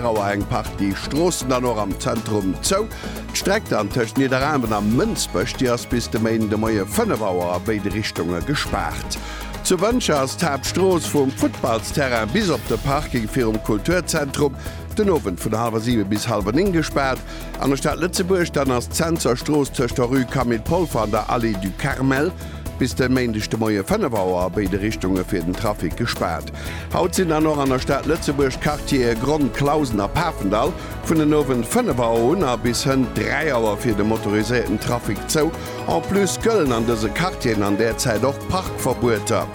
Auer eng Partie Stroossen dann och am Zentrum zou. D'Streck dann tëscht Nidderaanwen a Mënsbech, déi ass bis de Méinden de Moie 5 Auer a béide Richtunge gespaart. Zu Wëntger ass d'Haaptstrooss vum Futtballsterrain bis op de Parking virum Kulturzentrum den Owend vun hallwer 7 bis hallwer 9 gespaart. An der Stad Lëtzebuerg dann ass d'Censer Strooss tëscht der Rue Camille Polfer an der Allée du Carmel bis de Méindeg de Moie 5 Auer a béide Richtunge fir den Trafic gespaart. Haut sinn dann och an der Stad Lëtzebuerg d'Quartiere Gronn, Clausen a Pafendall vun den Owend 5 Auer un a bis hënt 3 Auer fir de motoriséierten Trafic zou. En plus gëllen an dëse Quartieren an där Zäit och Parkverbueter.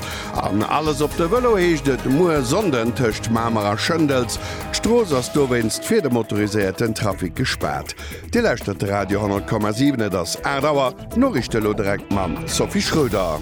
An alles op de Vëlo heescht et muer Sonnden tëscht Mamer a Schëndels. D'Strooss ass dowéinst fir de motoriséierten Trafic gespaart. Dir lauschtert de Radio 10,7, et ass 8 Auer. D'Noriichte elo direkt mam Sophie Schroeder.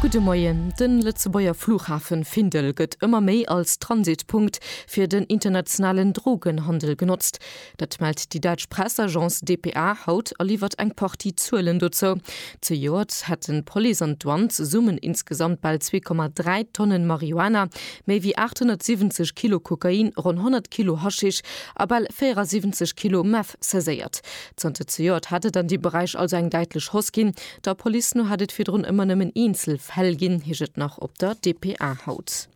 Gudde Moien. De Lëtzebuerger Flughafe Findel gëtt ëmmer méi als Transitpunkt fir den internationalen Drogenhandel genotzt. Dat mellt déi däitsch Pressagence dpa haut a liwwert eng Partie Zuelen dozou. Zejoert hätten d'Police an d'Douane zesummen insgesamt bal 2,3 Tonnen Marihuana, méi wéi 870 Kilo Kokain, ronn 100 Kilo Haschisch a bal 74 Kilo Meth saiséiert. Zanter zejoert hätt et an deem Beräich also eng däitlech Hausse ginn. Der Police no hätt et virdrun ëmmer nëmmen eenzel Fäll ginn, heescht et nach op der dpa haut.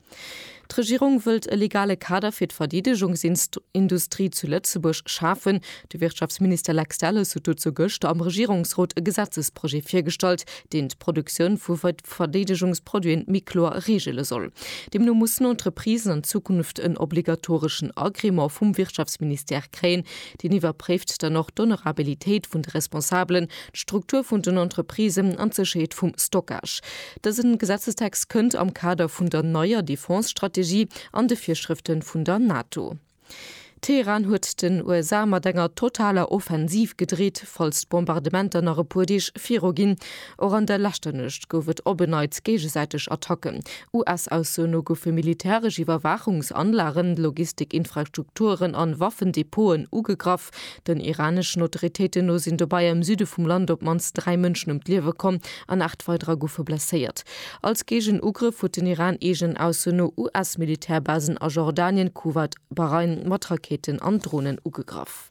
D'Regierung wëllt e legale Kader fir d'Verdeedegungsindustrie zu Lëtzebuerg schafen. De Wirtschaftsminister Lex Delles huet dozou gëschter am Regierungsrot e Gesetzesprojet virgestallt, deen d'Produktioun vu Verdeedegungsproduiten méi kloer reegele soll. Deemno mussen Entreprisen an Zukunft en obligatoreschen Agrément vum Wirtschaftsministère Enquête kréien, deen iwwerpréift dann och d'Honorabilitéit vun de Responsabelen, d'Struktur vun den Entreprisen an d'Sécherheet vum Stockage. Dësen Gesetzestext kënnt am Kader vun der neier Defense-Strategie an de Virschrëften vun der NATO. Teheran huet den USA mat enger totaler Offensiv gedreet, falls d'Bombardementer nach e puer Deeg viruginn. Och an der leschter Nuecht gouf et op en Neits géigesäiteg Attacken. US-Ausso no goufe militäresch Iwwerwaachungsanlagen, Logistikinfrastrukturen an Waffendepoten ugegraff. Den iraneschen Autoritéiten no sinn dobei am Süde vum Land op d'mannst dräi Mënschen ëm d'Liewe komm an aacht weiderer goufe blesséiert. Als Géigenugrëff huet den Iran eegen Ausso no US-Militärbasen a Jordanien, Kuwait, Bahrain mat Raketen an Dronen ugegraff.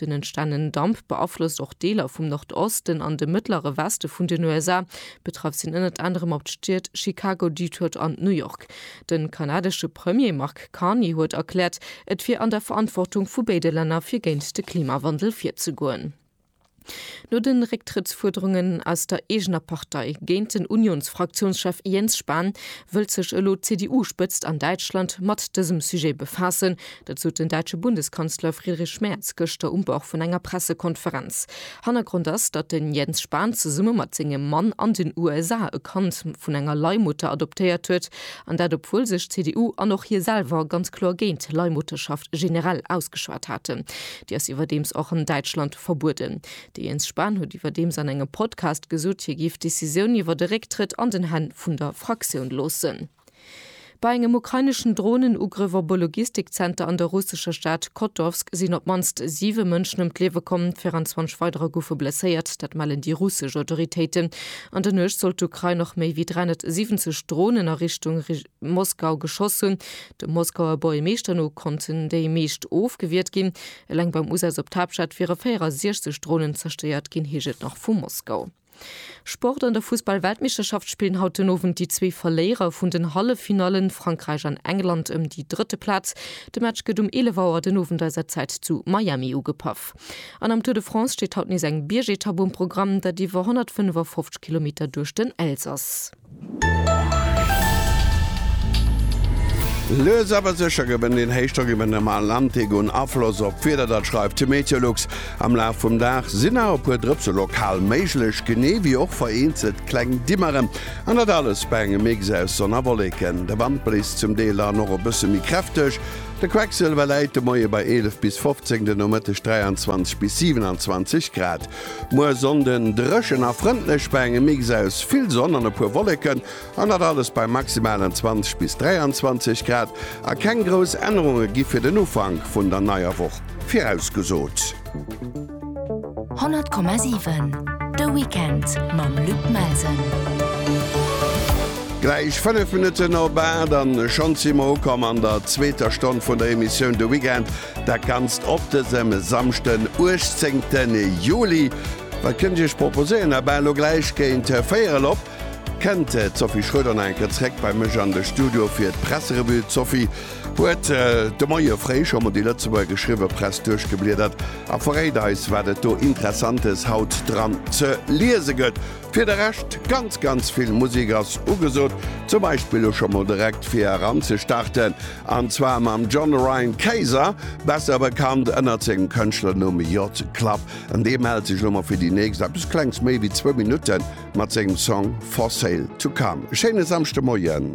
Den entstanenen Damp beaflosst och Deeler vum Nordosten an de mëttlere Weste vun den USA. Betraff sinn ënnert anerem op d'Stied Chicago, Detroit an New York. De kanadesche Premier Mark Carney huet erkläert, et wier an der Verantwortung vu béide Länner fir géint de Klimawandel virzegoen. No de Récktrëttsfuerderungen aus der eegener Partei géint den Unions-Fraktiounschef Jens Spahn, wëllt sech elo d'CDU-Spëtzt an Däitschland mat dësem Sujet befaassen, Dat sot den däitsche Bundeskanzler Friedrich Merz gëschter um Bord vun enger Pressekonferenz. Hannergrond ass, datt den Jens Spahn zesumme mat sengem Mann an den USA e Kand vun enger Leihmutter adoptéiert huet. An dat obwuel sech d'CDU an och hie selwer ganz kloer géint Leihmutterschaft generell ausgeschwat haten. Déi ass iwwerdeems och an Däitschland verbueden. De Jens Spahn huet iwwerdeems an engem Podcast gesot, hie géif d'Decisioun iwwer de Récktrëtt an den Hänn vun der Fraktioun loossen. Bei engem ukraineschen Dronenugrëff op e Logistikzenter an der russescher Stad Kotovsk sinn op d'mannst siwe Mënschen ëm d'Liewe komm, 24 weiderer goufe blesséiert. Dat mellen déi russesch Autoritéiten. An der Nuecht soll d'Ukrain och méi wéi 370 Dronen a Richtung Moskau geschoss hunn. Dem Moskauer Bourjemeeschter no konnten déi meescht ofgewiert ginn. Eleng beim Usaz op d'Haaptstad wiere 64 Dronen zerstéiert ginn, heescht et nach vu Moskau. Sport An der Fussball-Weltmeeschterschaft spillen haut den Owend déi zwee Verléierer vun den Halleffinallen, Frankräich an England, ëm déi drëtte Plaz. De Match gëtt um 11 Auer den Owend eiser Zäit zu Miami ugepaff. An am Tour de France steet haut nees eng Biergetapp um Programm, dat iwwer 155 Kilometer duerch den Elsass. Lues awer sécher gewënnt een Héichdrock iwwer dem Atlantik un Afloss op d'Wieder. Dat schreift de Meteolux. Am Laf vum Dag sinn nach e puer Drëpse lokal méiglech, genee ewéi och vereenzelt kleng Dimmeren. An dat alles bei engem Mix aus Sonn a Wolleken. De Wand bléist zum Deel dann och e bësse méi kräfteg. De Quecksilwer läit de Moie bei 11 bis 15, den Nomëtteg 23 bis 27 Grad. Muer Sonnden dréchen a frëndlech bei engem Mix aus vill Sonn an e puer Wolleken, an dat alles bei maximalen 20 bis 23 Grad. A keng grouss Ännerunge gi fir den Ufank vun der neier Woch virausgesot. 100,7 De Weekend mam Luc Melsen. Gläich 5 Minutten op 8 an schonns si mer ukomm an der zweeter Stonn vun der Emissioun De Weekend. Dat ganzt op dësem Samschden 18 Juli. Wat kënnt Iech proposéieren? A bal elo gläich géint 4 erop kennt d'Sophie Schröder nach eng Kéier zréck bei mech an de Studio fir d'Presserevue. D'Sophie huet de Moie fréi scho mol déi Lëtzebuerger geschriwwe Press duerchgebliedert a verréit eis wat et do Interessantes haut dran ze liese gëtt. Fir de Rescht ganz ganz vill Musek ass ugesot, zum Beispill elo scho mol direkt fir eran ze starten An zwar mam John Ryan Kayser, besser bekannt ënnert sengem Kënschtlernumm J-Club. An dee mellt sech lo mol fir déi nächst eppes Klengs méi wéi zwou Minutten mat sengem Song For Sale To Come. E schéine Samschdemoien!